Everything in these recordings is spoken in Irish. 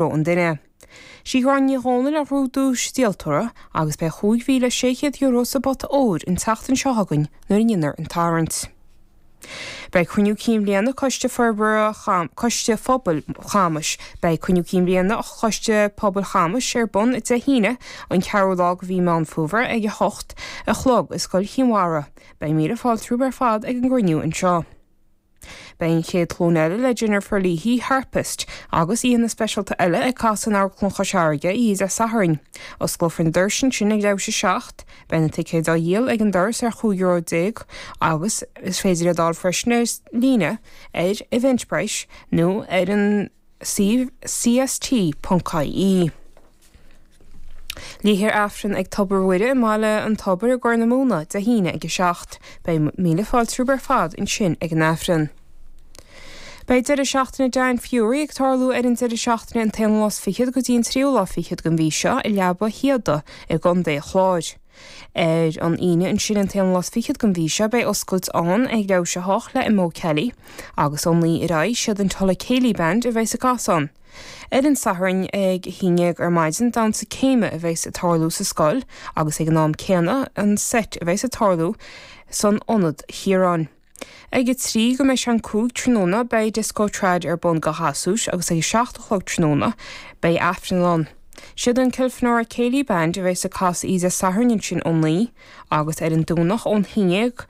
raibh an duine. Sí Gráinne Ní Dhomhnaill a ghnóthaigh duais díoltóra agus beidh €5,600 sa bpota óir an tseachtain seo chugainn nuair a ndéanfar an tarraingt. Beidh Cruinniú Cinn Bhliana Coiste Forbartha Coiste Phobail Chamais Beidh Cruinniú Cinn Bhliana Choiste Pobail Chamais ar bun Dé hAoine an 4ú lá de mhí Meán Fómhair ag 8 a chlog i Scoil Chinn Mhara. Beidh míle fáilte romhaibh ar fad ag an gcruinniú anseo. Beidh an chéad ghlúin eile le Jennifer Leahy, Harpist, agus aíonna speisialta eile ag casadh in Amharclann Chois Fharraige oíche Dé Sathairn. Osclófar na doirse ansin ag leathuair tar éis a seacht. Beidh na ticéid á dhíol ag an doras ar chúig euro déag agus is féidir iad a fháil freisin ar líne ar Eventbrite nó ar an. CST.ie, Léifear Aifreann ag Tobar Mhuire i mBaile an Tobair i gCorr na Móna, Dé hAoine ag 7. Beidh míle fáilte romhaibh ar fad ansin ag an Aifreann. Beidh deireadh seachtaine Dan Furey ag tarlú ar an deireadh seachtaine an t-aonú lá is fichead go dtí an tríú lá fichead den mhí seo i Leaba Shíoda i gContae an Chláir. Ar an Aoine ansin an t-aonú lá is fichead den mhí seo beidh oscailt ann ag leathuair tar éis a hocht le Mo Kelly agus ón 9 ar aghaidh is iad an Tulla Céilí Band a bheas ag casadh ann. Ar an Satharn ag a haon déag ar maidin damhsa céime a bheas ag tarlú sa scoil agus ag an am céanna an seit a bheas ag tarlú san Ionad Chiaráin. Ag a trí go mbeidh sé an cúig tráthnóna beidh Disco Trad ar bun do ghasúir agus ag a seacht a chlog tráthnóna beidh Aifreann ann. Siad an Kilfenora Céilí Band a bheas ag casadh oíche Dé Sathairn ansin ó naoi agus ar an Domhnach ón haon dhéag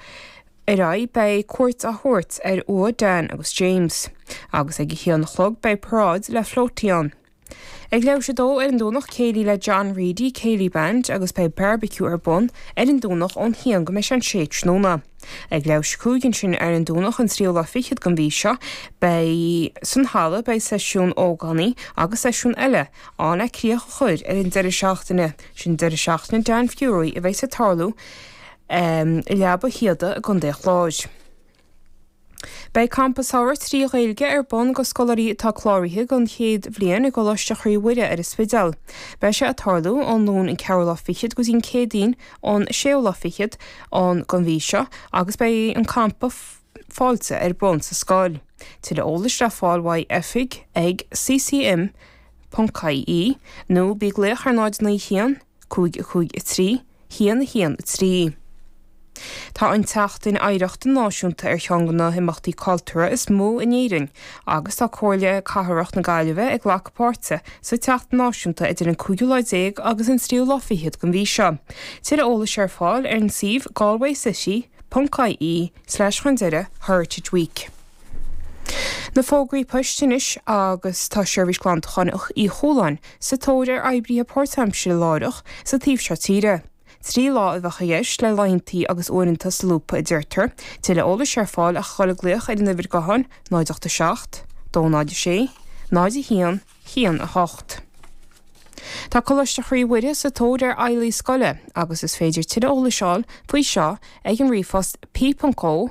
ar aghaidh beidh cuairt á thabhairt ar uaigh Dan agus James agus ag a haon a chlog beidh paráid le flótaí ann. Ag leathuair tar éis a dó ar an Domhnach Céilí le John Reidy Céilí Band agus beidh bearbaiciú ar bun ar an Domhnach ón haon go mbeidh sé an sé tráthnóna. Ag leathuair tar éis a cúig ansin ar an Domhnach an tríú lá fichead den mhí seo beidh san halla beidh seisiún ógánaigh agus seisiún eile ann le críoch a chur ar an deireadh seachtaine sin deireadh seachtaine Dan Furey a bheas ag tarlú i Leaba Shíoda i gContae Chláir. Beidh Campa Samhraidh trí Ghaeilge ar bun do scoláirí atá cláraithe don chéad bhliain i gColáiste Chroí Mhuire ar an Spidéal. Beidh sé ag tarlú ón Luan an ceathrú lá fichead go dtí an Céadaoin an séú lá fichead an den mhí seo agus beidh an campa fáilte ar bun sa scoil. Tuilleadh eolais le fáil uaidh oifig ag ccm. ie nó bí ag glaoch ar 0 9 1 5 5 3 1 1 3 Tá an tSeachtain Oidhreachta Náisiúnta ar cheann de na himeachtaí cultúrtha is mó in Éirinn agus tá Comhairle Cathrach na Gaillimhe ag glacadh páirte sa tseachtain náisiúnta idir an cúigiú lá déag agus an tríú lá fichead den mhí seo. Tuilleadh eolais ar fáil ar an suíomh galwaycity.ie slash chun deiridh heritageweek. Na fógraí poist anois agus tá Seirbhís Glantacháin Uí Chualáin sa tóir ar oibrithe páirtaimsire láithreach sa taobh seo tíre. Trí lá a bheadh i gceist le laethantaí agus uaireanta solúbtha a deirtear. Tuilleadh eolais ar fáil ach dhul ag glaoch ar an uimhir gutháin 08 7 206 0 1 1 8. Tá Coláiste Chroí Mhuire sa tóir ar fheighlí scoile agus is féidir tuilleadh eolais fháil faoi seo ag an ríomhphost, po.co,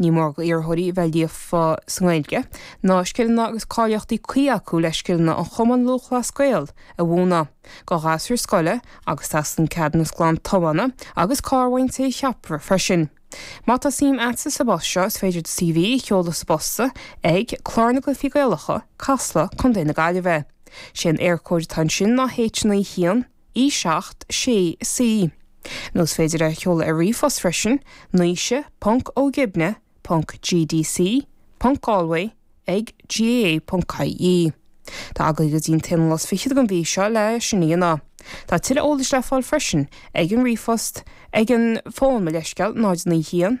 Ní mór do iarrthóirí a bheith líofa sa nGaeilge, na scileanna agus cáilíochtaí cuí acu le scileanna an Chumann Lúthchleas Gael a mhúineadh, do ghasúir scoile agus teastaíonn ceadúnas glan tiomána agus carr ón té a cheapfar freisin. Má tá suim agatsa sa bpost seo is féidir do CV a sheoladh sa bposta ag, Clár na gCluifí Gaelacha, Casla, Co. na Gaillimhe. Sé an Eircode atá ansin ná H9 1. E seacht, sé, C. Nó is féidir é a sheoladh ar ríomhphost freisin, Naoise, ponc, Ó Gibne, ponc, GDC, ponc, Galway, ag, GAA, ponc, IE. Tá agaibh go dtí an t-aonú lá 's fichead den mhí seo le sin a dhéanamh. Tá tuilleadh eolais le fáil freisin ag an ríomhphost, ag an bhfón, mo leithscéal, 0 9 1,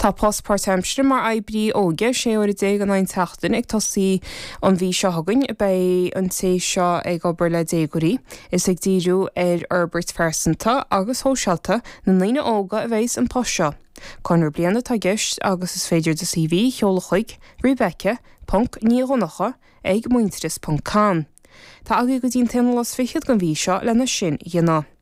Tá post páirtaimseartha mar oibrí óige sé uaire déag in aghaidh an tseachtain ag tosaí an mhí seo chugainn. Beidh an té seo ag obair le déagóirí is ag díriú ar fhorbairt phearsanta agus shóisialta na ndaoine óga a bheas an post seo. Conradh bliana atá i gceist agus is féidir do CV a sheoladh chuig, Rebecca, Ponc, Ní Dhonnacha, ag, Muintearas, Ponc, Com. Tá agaí go dtí an t-aonú lá is fichead den mhí seo lena sin dhéanamh.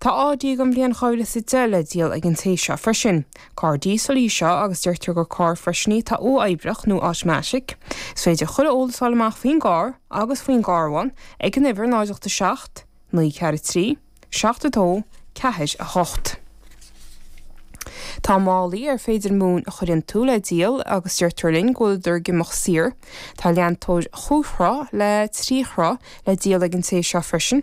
Tá Audi den bhliain dhá mhíle 's a deich le díol ag an té seo freisin. Carr díosail í seo agus deirtear gur carr freisin í atá uathoibreach nó automatic. Is féidir chuile eolas fháil amach faoin gcarr agus faoin gcarbhán ag an uimhir 0 87 943 72 48. Tá málaí ar féidir móin a chur iontu le díol agus deirtear linn go bhfuileadar ag imeacht saor. Tá leantóir chúig throigh le trí throigh le díol ag an té seo freisin.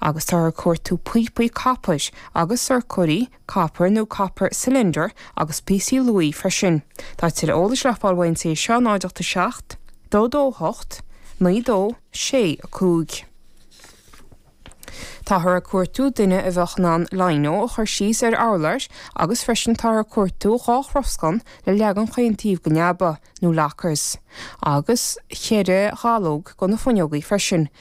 agus táthar ag cuartú píopaí copair agus sorcóirí copair nó copper cylinder agus píosaí luaidhe freisin. Tá tuilleadh eolais le fáil ón té seo 08 7 22 8 9 2 6 5. Táthar ag cuartú duine a bheadh in ann Lino a chur síos ar urláir agus freisin táthar ag cuartú dhá throscán le leagan chaon taobh den leaba, nó lockers, agus cheithre dhallóg do na fuinneogaí freisin.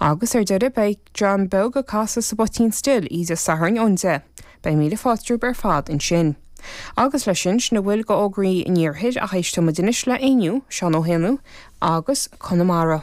Agus ar deireadh beidh dream beag ag casadh sa bpoitín stil Aois a' Sathairn ón deich. Beidh míle fáilte romhaibh ar fad ansin. Agus leis sin, sin a bhfuil go fhógraí an iarthair ach éisteoimid anois le Éinniú, Seán Ó hÉanaigh agus Conamara.